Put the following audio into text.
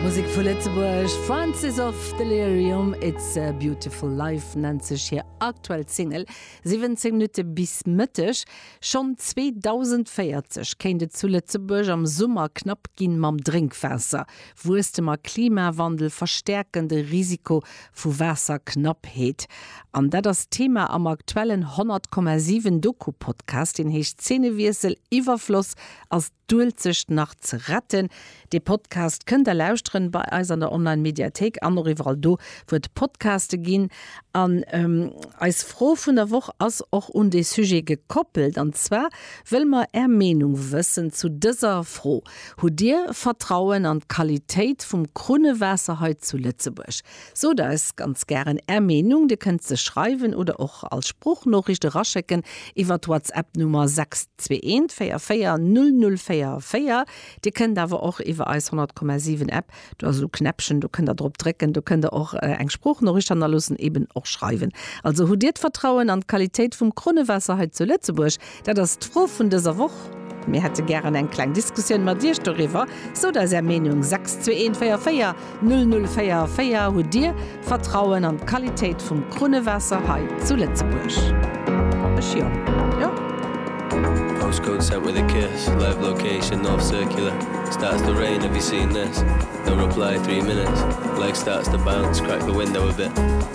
Musek vu Lëtzebuerg, Francis of Delirium, It's a Beautiful Life nennt sech hir aktuell Single. 17 Minutte bis Mëtteg. Schonn 2040 kéint et zu Lëtzebuerg am Summer knapp gi mam Drénkwaasser. Wuesstem a Klimawandel verstäerken de Risiko vu Waasserknappheet. An dat ass d'Thema am aktuellen 100,7 Doku-Podcast, deen heescht Zeenewiessel, Iwwerfloss ass D'Uelzecht nach ze retten. Dee Podcast kënnt der lauschteren bei eis an der Online Mediathéik an och iwwerall do wou et Podcaste ginn. An eis Fro vun der Woch ass och un dee Sujet gekoppelt an zwar wëlle mer är Meenung wëssen zu dëser Fro, Hutt dir Vertrauen an d'Qualitéit vum Krunnewaasser hei zu Lëtzebuerg? Sot eis ganz gären Är Meenung, Dir kënnt se schreiwen oder och als Sproochnoriicht eraschécken iwwer d'Whatsapp-Nummer 621440044. Dir kënnt awer och iwwer eis 100,7 App, do ass esou Knäppchen, do kënnt Der drop drécken, do kënnt Der och eng Sproochnoriicht hannerloossen, eben och schreiwen. Also, hutt Dir d'Vertrauen an d'Qualitéit vum Krunnewaasser hei zu Lëtzebuerg? Dat ass d'Fro vun dëser Woch. Mir hätte gären eng kleng Diskussioun mat Iech doriwwer. Sot eis Är Meenung, 62144 0044. Hutt Dir Vertrauen an d'Qualitéit vum Krunnewaasser hei zu Lëtzebuerg? Ech jo. Jo. Postcode sent with a kiss live location north circular starts to rain have you seen this no reply three minutes leg starts to bounce crack the window a bit.